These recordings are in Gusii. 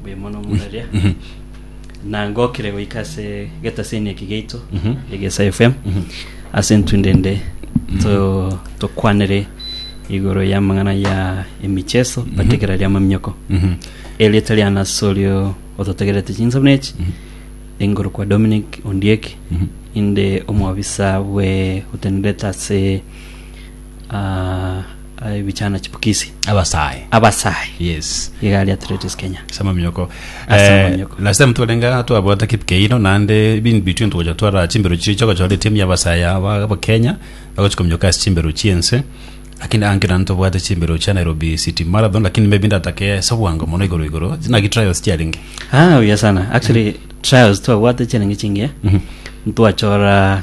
mbuya mono omoraria na ngokire goika ase getaseni eki geito egesa fm ase ntundende to- tokwanere igoro ya amang'ana ya emicheso bategera ria mamioko erieta ria nasi orio ototegerete chinsemo echi engoro kwa dominic ondieki inde omwabisa bwe otenerete ase ah, ah, ebichana chipukisi abasae abasae yes igari athletics kenya sama miyoko Ase Eh, amanyoko. last time twarenga twabwata kipkeino naende bin between twacha twara chimbero chiria chogochora etimu ya basaya aba aba kenya bagochika myoka ase chimbero chiense lakini ankira ntobwate chimbero chia nairobi city marathon lakini maybe ndatake ase obwango mono igoro igoro naki trials chiarenge ah oya sana actually trials twabwate chirenge chingiya ntwachora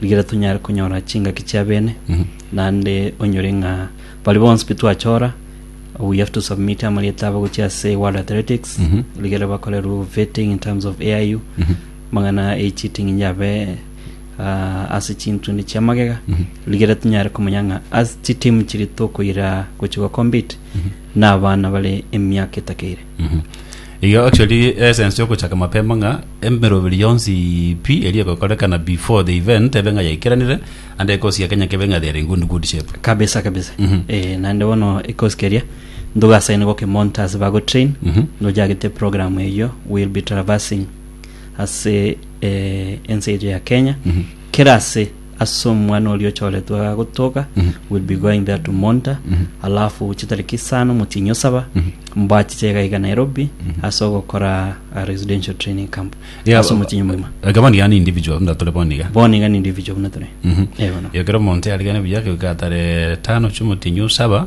Rigereria tonyare konyora chingaki chia bene, naende onyore ng'a bari bonsi pi twachora we have to submit amarieta abo gochia ase World Athletics rigereria bakorerwe vetting in terms of AIU mang'ana e cheating inyabe ah, ase chintundi chia magega rigereria tonyare komanya ng'a ase chitimu chiri tokoira gochia gokompete na abana bare emiaka etakeire Igo actually essence yogochaka mapema ng'a emeroberi yonsi pi eri egokorekana before the event ebe ng'a yaikeranire and ekosi ya Kenya kebe ng'a they are in good, good shape. kabisa kabisa Mhm. eh, naende bono ekosi keria ntogasaine gokemonta ase bagotrain Mhm. nojagete program eyio will be traversing ase eh, ense eria ya kenya Mhm. kera ase ase omwana oria ochoretwe agagotoga will be going there to monta alafu chitariki isano motinyo saba mbachiche iga iga nairobi ase ogokora a residential training camp Yeah, ase omotinyo moima Like bono yani individual buna tore bono iga bono iga ni individual buna tore Mhm. Eh, bono. ekero omonto yarigane buya gioka atare tano chiomotinyu saba